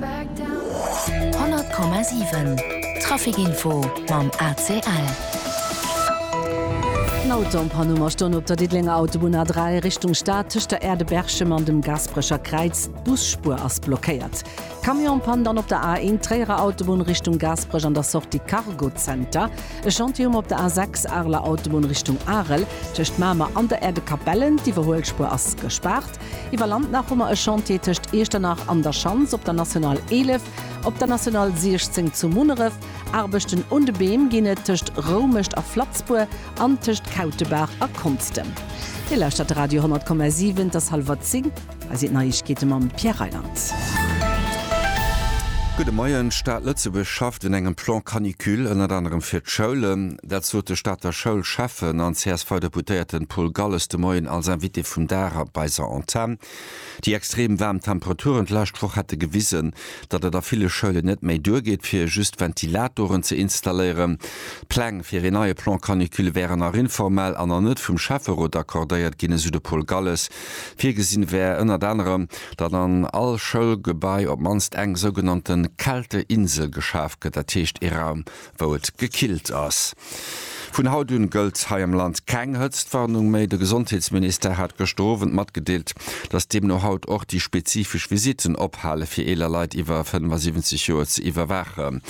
100,7 Traficinfo mam ACL. En Auto am Panuma stoung op der Diddelenger Autobunn A3 Richtung Stad tëscht der Aire de Berchem an dem Gasperecher Kräiz. D'Busspuer ass blockéiert. Camion am Panne dann op der A1 Tréierer Autobunn Richtung Gasperech an der Sortie Cargozenter. E Chantier um op der A6 Areler Autobunn Richtung Arel tëscht Mamer an der Aire de Capellen. D'Iwwerhuelspuer ass gespaart. Iwwer Land nach hu mer e Chantier tëscht Iechternach an der Schanz op der National 11, op der National 16 zu Munneref. Aarbechten un de Beem ginn et tëscht Roumecht a Flatzbuer an tëscht Kautebaach a Konstem. Dir lauschtert de Radio 10,7, et ass hallwer 10, hei sinn d'Neiegkeete mam Pierre Reyland. Gudde Moien, D'Stad Lëtzebuerg schafft un engem Plan canicule, ënnert anerem fir d'Schoulen. Dat sot de Stater Schoulschäffen an CSV-Deputéierten Paul Galles de Moien als Invité vum Dag op eiser Antenn. Déi extrem waarm Temperaturen d'lescht Woch hätte gewisen, datt et a ville Schoulen net méi duergeet, fir just Ventilatoren ze installéieren. D'Pläng fir een neie Plan canicule wären nach informell an nach net vum Schäfferot accordéiert ginn, esou de Paul Galles. Virgesinn wär ënnert anerem, datt an all Schoulgebai op d'mannst eng sougenannte Kälteinsel geschaf gëtt, dat heescht ee Raum wou et gekillt ass. Vun haut un gëllt hei am Land keng Hëtztwarnung méi. De Gesondheetsministère hat gëschter Owend matgedeelt, datt deemno haut och déi spezifesch Visitten ophale fir eeler Leit iwwer 75 Joer ze iwwerwaachen.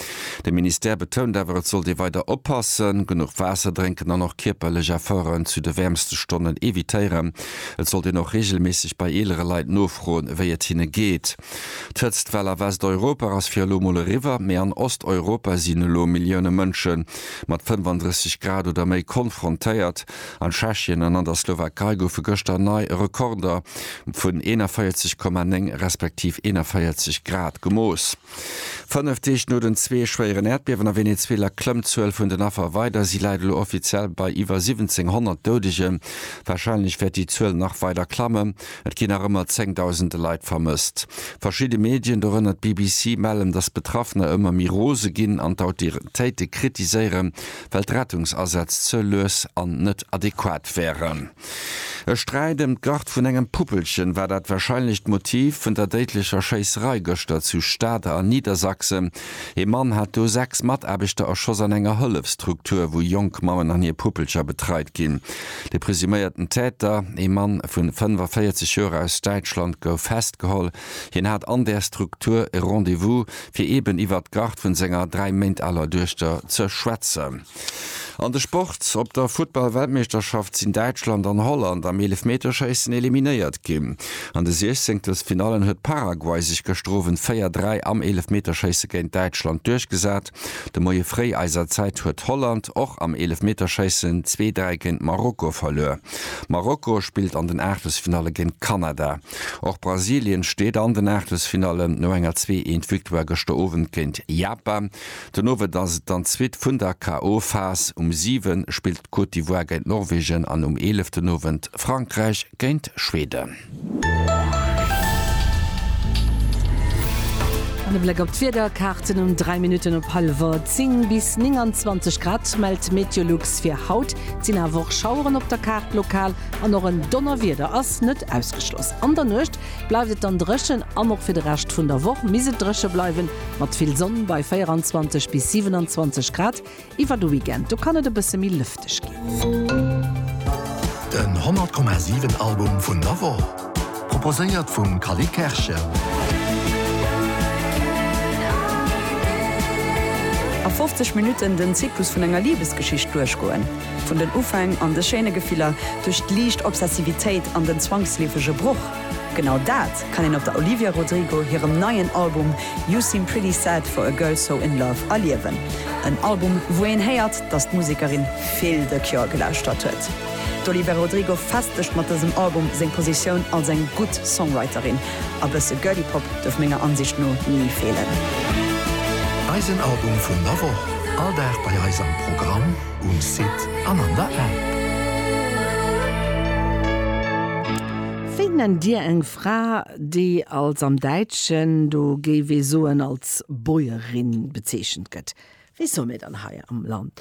De Ministère betount awer, et sollt ee weider oppassen, genuch Waasser drénken an och kierperlech Efforten zu de wäermste Stonnen evitéieren. Et sollt een och reegelméisseg bei eelere Leit nofroen, wéi et hinne geet. D'Hëtztwell a Westeuropa ass fir elo mol eriwwer, mee an Osteuropa sinn elo Millioune Mënsche mat 35 Grad oder méi konfrontéiert. An Tschechien an an der Slowakei goufe gëschter nei Rekorder vun 41,9 respektiv 41 Grad gemooss. Fënnef Deeg no den zwee schwéieren Äerdbiewen a Venezuela klëmmt d'Zuel vun den Affer weider. Si läit elo offiziell bei iwwer 1700 Doudegen. Warscheinlech wäert déi Zuel nach weider klammen, Et ginn nach ëmmer zéngdausende Leit vermësst. Verschidde Medien, dorënner d'BBC, mellen, datt d'Betraffener ëmmer méi rose ginn an d'Autoritéite kritiséieren, well d'Rettungsasätz ze lues an net adequat wären. E Sträit ëm d'Garde vun engem Puppelchen war dat warscheinlecht Motiv vun der déidlecher Schéisserei gëschter zu Stade a Niedersachsen. Ee Mann hat do sechs Mataarbechter erschoss an enger Hëllefsstruktur, wou jonk Mammen an hir Puppelcher betreit ginn. De presuméierten Täter, ee Mann vu 45 Joer aus Däitschland, gouf festgeholl. Hien hat an där Struktur e Rendez-vous, fir eeben iwwert d'Garde vun senger dräi Méint aler Duechter ze schwätzen. An de Sport, Op der Futtball-Weltmeeschterschaft sinn Däitschland an Holland am Eelefmeterschéissen eliminéiert ginn. An de Siechzenktelfinallen huet Paraguay sech gëschter Owend 4, 3 am Eelefmeterschéisse géint Däitschland duerchgesat. De Moie fréi eiser Zäit huet Holland och am Eelefmeterschéissen zwee, dräi géint Marokko verluer. Marokko spillt an den Aachtelsfinalle géint Kanada. Och Brasilien steet an den Aachtelsfinallen no enger zwee eent Victoire gëschter Owend géint Japan. Den Owend ass et dann d'zweet vun der KO-Phas. Um 7 spillt d'Côte d'Ivoire géint Norwegen an um 11 den Owend Frankräich géint Schweden. An e Bléck op d'Wiederkaarten um 3 Minutten op hallwer 10, Bis 29 Grad mellt d'Meteolux fir haut. Et sinn awer och Schaueren op der Kaart lokal an och en Donnerwieder ass net ausgeschloss. An der Nuecht Bleift et dann dréchen an och fir de Rescht vun der Woch misst et dréche bleiwen, mat vill Sonn bei 24 bis 27 Grad. Iwwer de Weekend do kann et e bësse méi lëfteg ginn. Den 100,7 Album vun der Woch proposéiert vum Cally Kerschen. A 50 Minutten den Zyklus vun enger Libesgeschicht duerchgoen. Vun den Ufäng an de schéine Gefiller, duerch d'liicht Obsessivitéit an den zwangsleefege Broch, genau dat kann een op der Olivia Rodrigo hirem neien Album You Seem Pretty Sad For A Girl So In Love erliewen. En Album, wou een héiert, dass d'Musekerin vill The Cure gelauschtert huet. D'Olivia Rodrigo festegt mat dësem Album seng Positioun als eng gutt Songwriterin. A bësse Girly Pop duerf menger Ansicht no ni feelen. Eisen Album vun der Woch, all Dag bei eis am Programm. Um Site an an der App. Wéi nennt Dir eng Fra, déi als, am Däitschen, do géif ee soen, als Bäuerin bezeechent gëtt? Wéi soe mir dann hei am Land,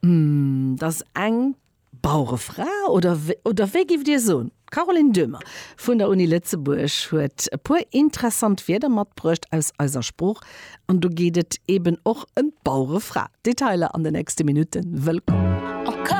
Hm, dat ass eng Bauerefra? Oder, oder wéi géif Dir soen? D'Caroline Döhmer vun der Uni Lëtzebuerg huet e puer interessant Wierder matbruecht aus eiser Sprooch an do geet et eben och ëm d'Bauerefra. Detailer an den nächste Minutten. Wëllkomm!